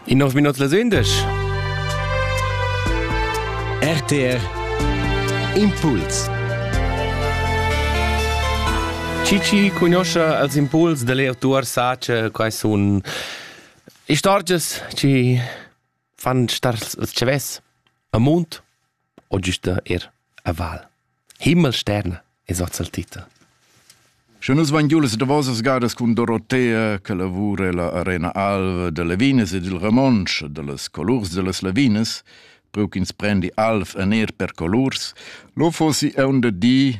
In nov minut las 11. RTR Impuls Cici cunosce als impuls da leer tuar sace quai sun istorgias ci fan star il tschavess a mund o giusta er a val. Himmel sterna es hoz il titel. Sche nus van giu las davosas gadas cun Dorotea che lavura la Arena Alva de Levinas e dil Ramonsch de las colurs de las Levinas, preu ch'ins prendi alf en er per colurs, lo fossi eun de di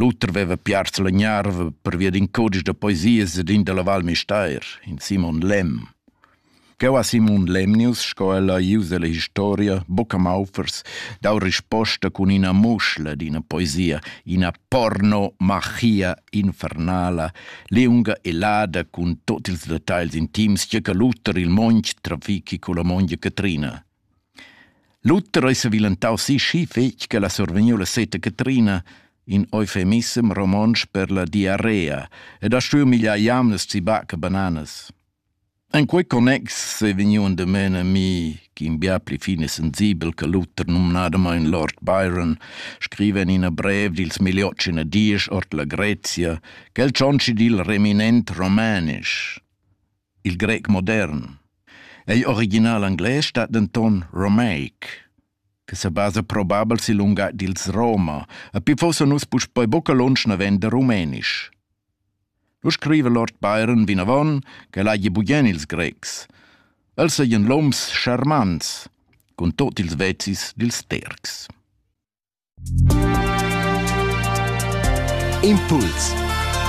L'uter veva piars la gnarva pervia d'in cudisch da poesias ed in dalla Val Müstair, in Simon Lemm. Cheu ha Simon Lemnius, sco el ha ius ella historia, buca maufers, dau risposta cun ina muschla d'ina poesia, ina porno-machia infernala, liunga e lada cun tut ils detagls intims che che l'uter il monch trafichi culla mongia Catrina. Luther ei sevilentau sischi fetg ch'el ha survegniu la seta Catrina, in eufemissem romontsch per la diarrea, ed ha stuiu migliar jamnas ziba che bananas. En quei connex sei vegniu endamen a mi, ch'in bia pli fin e sensibel che Luther, numnadamein Lord Byron, scriva en ina brev dils Miliots in a diesch ord la Grezia, ch'el tschontschi dil reminent romanisch. Il grec modern. Ei original englais stat denton romaic, che sebasa probabel sil lungatg dils Roma, e pli fossa nus puspei buca lunsch naven da rumenisch. Lu scriva Lord Byron vinavon ch'el hagi bugien ils grecs. Els seigien loms charmants, cun tot ils vezis dils tercs. Impuls